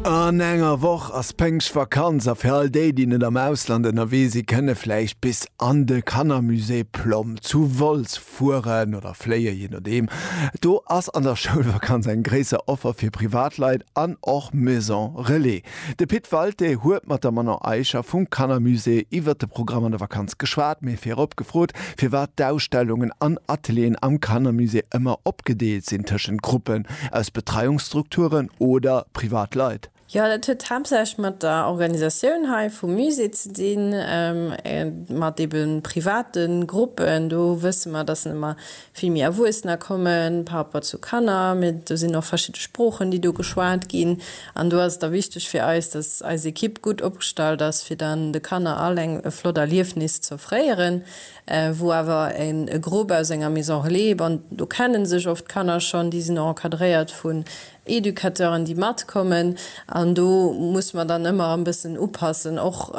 An enger Woch ass Pëngschtvakanz a fir all déi, déi net am Ausland ënnerwee si kënne vläicht bis an de Kannermusée Plomm zu Wolz fueren oder fléien, jee nodeem. Do ass an der Schoulvakanz eng gréisser Offer fir Privatleit an och Maison Relais. De Pit Walté huet mat der Manon Eicher vum Kannermusée iwwer de Programm an der Vakanz geschwat, mee virop gefrot, firwat d'Ausstellungen an Atelieren am Kannermusée ëmmer opgedeelt sinn tëschent Gruppen Aus Betreiungsstrukturen oder privat Leit? Jo, dat huet haaptsächlech mat der Organisatioun hei vum Musée ze dinn, mat ebe private Gruppen. Do wësse mer, datt ëmmer vill méi Erwuessener kommen par rapport zu Kanner. Mee do sinn och verschidde Sproochen, déi do geschwat ginn. An do ass et da wichteg fir eis, datt eis Ekipp gutt opgestallt ass, fir dann de Kanner all eng e flott Erliefnis z'offréieren. wou awer en e Grupp aus enger Maison Relais, bon do kennen sech oft d'Kanner schonn, déi sinn och encadréiert vun Educateuren, déi matkommen an do muss mer dann ëmmer e bëssen upassen. Och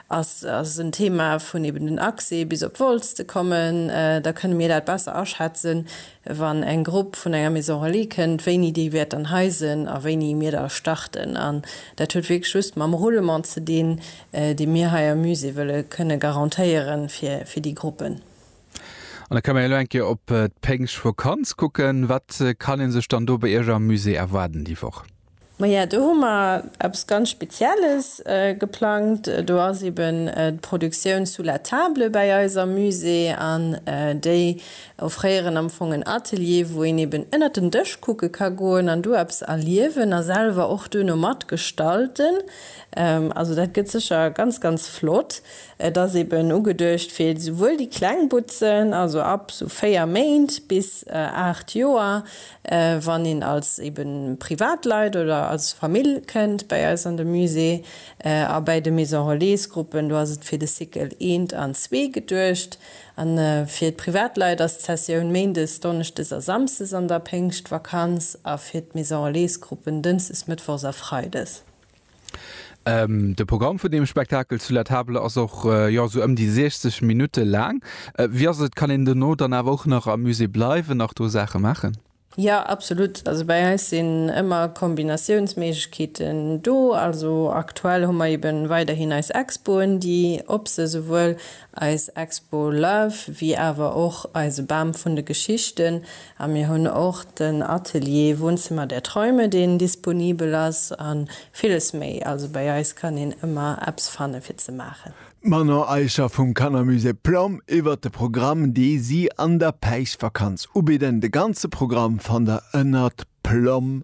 ass ass en Thema vun eben den Accès bis op Wolz ze kommen, da kënne mir dat besser aschätzen, wann eng Grupp vun enger Maison Relais kënnt, wéini déi wäert dann hei sënn a wéini mir da starten. An dat huet wierklech just mam Roulement ze dinn, dee mir hei am Musée wëlle kënne garantéieren fir déi Gruppen. An da kënne mer elo eng Kéier op d'Péngschtvakanz kucken. Wat kann ee sech dann do bei Iech am Musée erwaarden déi Woch? Maja, do hu mer eppes ganz Spezielles geplangt. Do ass eben d'Produktioun Sous la table bäi eis am Musée an déi offréieren am Fong en Atelier, wou een eben ënnert den Dësch kucke ka goen an do eppes erliewen a selwer och duerno mat gestalten. Also dat gëtt sécher ganz, ganz flott. Et ass eben ugeduecht fir esouwuel déi kleng Butzen, also ab esou 4 Méint bis 8 Joer, Wann een als eben Privatleit oder als Famill kënnt bäi eis an de Musée a bäi de Maison Relais-Gruppen, do ass et fir de Cycle eent an zwee geduecht. A fir d'Privatleit ass d'Sessioun méindes, donneschdes a samsdes an der Péngschtvakanz a fir d'Maison Relais-Gruppen dënschdes, mëttwochs a freides. De Programm vun deem Spektakel zu La Table ass och jo esou ëm déi 60 Minutte laang. Wéi ass et, kann een dono dann awer och nach am Musée bleiwen, nach do Saache maachen? Jo, absolut. Also bei eis sinn ëmmer Kombinatiounsméiglechkeeten do. Also aktuell hu mer eeben weiderhin eis Expoen, déi op se, souwuel Eis Expo Love, wéi awer och eise Bam vun de Geschichten. A mir hunn och den Atelier Wohnzimmer der Träume, deen disponibel ass, a villes méi. Also bei eis kann een ëmmer eppes fanne fir ze maachen. D'Manon Eicher vum Kannermusée Plom iwwert de Programm, dee si an der Päischtvakanz ubidden. De ganze Programm fannt der ënnert plom.lu.